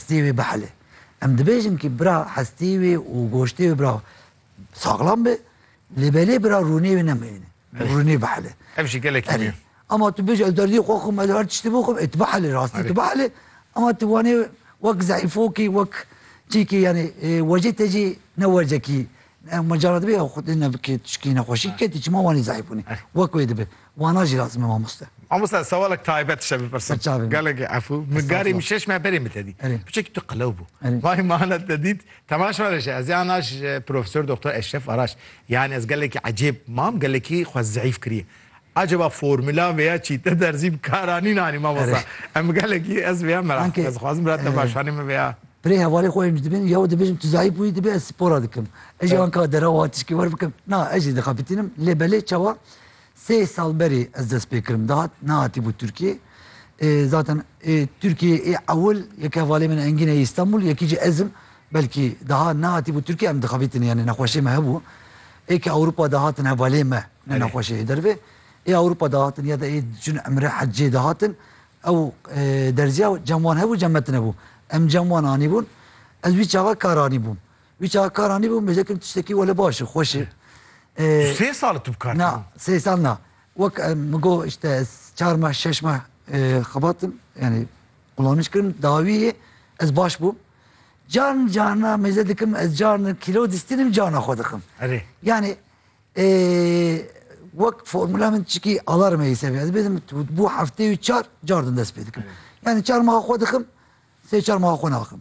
Hestê wê bihile. Em dibêjin kî bira hestê wê û goştê wê bira saxlam be, lê belê bira rûnê wê nemeyîne. Rûnê bihile. Ev jî gelekî mî yo. Ama tu bêjî ez derdî xwe xwim ez her tiştî bo xwim ê tu bihile rastî tu bihile ama tu wanê wek zehîfokî wek çîkî yanî wecê te jî ne wecekî ma cara dibe ya xwedê ne bikê tu şikî nexweşî ketî çima wanî zehîf bûnî wek wê dibe Wana jî razim e mamoste. Mamoste sewalek taybet dişe bipirsim. Berçavê min. Gelekî efû. Min garê min şeş meya berê min te dît. Erê. Piçekî tu qelew bû. Erê. Vay mane te dît. Temaş were ji ez yan aş ji Profesor Doktor Eşref Araş. Yanî ez gelekî ecêb mam, gelekî xwe zeîf kiriye. Acaba formula vêya çî te derzî bi kar anîn anî mamoste? Em gelekî ez vêya merak Anke, dikim. Ez dixwazim bira te baş anî min vêya. Pirê hevalê xwe em ji dibin yew dibêjin tu zeîf bûyî dibê ez spora dikim. Ez jî anka derew hatişkî wer bikim. Na ez jî dixebitînim lê belê çawa Sê sal berê ez dest pê kirim dihat nehatîbû Tirkiyê. Zaten ê Tirkiyê ê ewil yeke valê min Engîn ê Îstanbul yekî jî ez im. Belkî daha nehatîbû Tirkiyê em dixebîtin yanî nexweşê me hebû. Ê ke Ewropa de hatin hevalê me ne nexweşê ê dervê. Ê Ewropa de hatin ya da ê diçûn emre heccê de hatin ew derziya cem wan hebû cem me tine bû. Em cem wan anîbûn ez wî çaxa kar anîbûm. Wî çawa kar anîbû min vêjekirî tiştekî wele baş e, xweş e. Tu sê sal e tu bi kar tî. Na, sê sal na. Wek min got îşte ez çar meh şeş meh xebatim yanî qulanij kirim dawî yê ez baş bûm. Carin carina mêze dikim ez carina kîlo distînim carina xwe dixim. Erê. Yanî wek formula min çikî alarm heye ser vê ez bêdim bû hefteyê çar car din dest pê dikim. Yanî çar meha xwe dixim sê çar meha xwe naxim.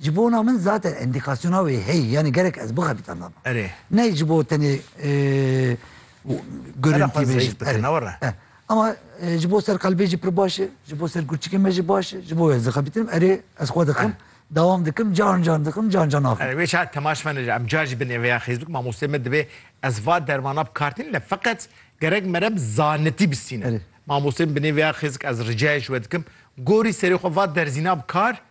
Ji bona min zaten endîkasyona wê heye yanî gerek ez bixebita lava. Erê. Ney ji bo tenê Herre xwe zeyf bike ne were. Ama ji bo ser qelbê jî pir baş e, ji bo ser kurçikê me jî baş e, ji bo ez dixebitinim erê ez xwe dixim, dawam dikim, can can dixim, can can axim. Erê wê çar temaş me neca, em car jî binê vêya xêzûk mamosteyê me dibê ez va dermana bikartînim ne feqet gerek merem zanitî bistîne. Mamosteyê min binê vêya xêzik ez ricayê ji we dikim gorî serê xwe va derzîna bikar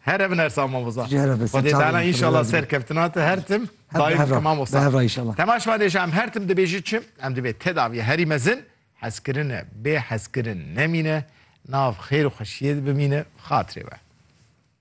Here bin Ersan Mamoza. Ji here bin, Xwedê serçavên Teala min xwe inşallah birazî. serkeftina te her tim Her daim behra, bike Mamoza. behra inşallah. Tema şima dê ji em her tim dibêjî çi? Em divê tedaviyê herî mezin, hezkirine, bêhezkirin nemîne, nav xêr û xweşiyê de bimîne, bi xatirê we.